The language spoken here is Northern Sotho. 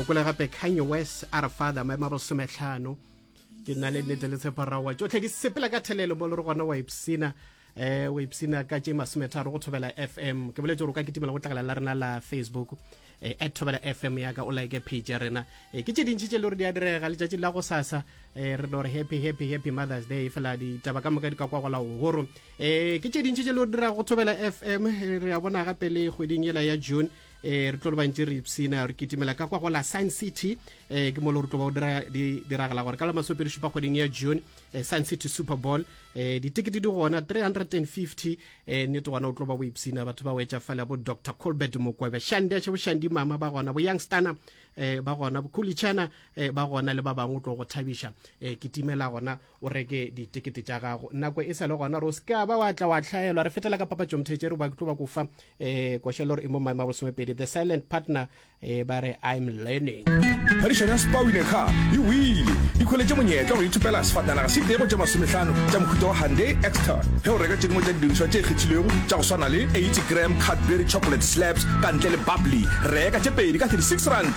o kwele gape kanye west a re father maemo a bosometlhano ke nna le nnete le tsheparawa tsotlhe di sepela ka thelelo mo le re gona wa ipsina eh wa ipsina ka tše masometharo go thobela fm ke boletse gore o ka kitimela go tlakala la rena la facebook eh, at thobela fm yaka o like page ya rena eh, ke tše dintšhi tše le gore di a direga letšatši la go sasa eh, re no re happy happy happy mothers day fela ditaba ka moka di ka kwa gola gogoro eh, ke tše dintšhi tše le gore dira go thobela fm re a bona gape le kgweding yela ya june eh re tlo le bantši re ipsina re kitimela ka kwa go la science city eh ke molo re tlo ba o dira di diragala gore ka la masopedi šupa kgweding ya june eh, science city super bowl eh ditekete di gona 350 eh nete gona o tlo ba boipsina batho ba wetša fela bo dr colbert mokwebe shandi a še boshandi mama ba gona bo youngstana eh ba gona bo kulichana eh ba gona le ba bangwe o tlo go thabiša eh kitimela gona o reke ditekete tša gago nako e sa le gona gore o seke ba wa tla wa tlhaelwa re fetela ka papatšo mothetše re ba tlo ba kofa um eh, košelo gore e mo maemo a bolesomepedi the silent partner um ba re i'm learning phadišano ya spawine ga e wile di kgoletše monyetla gore ithopela sefatanaga se itego tša masometlhano tša mohuta wa hande exter ge o reka tše dingwe tša didirišwa tše kgethilwego tša go swana le 80 gram cadbury chocolate slabs ka ntle le bubbly reka tše pedi ka 36 rand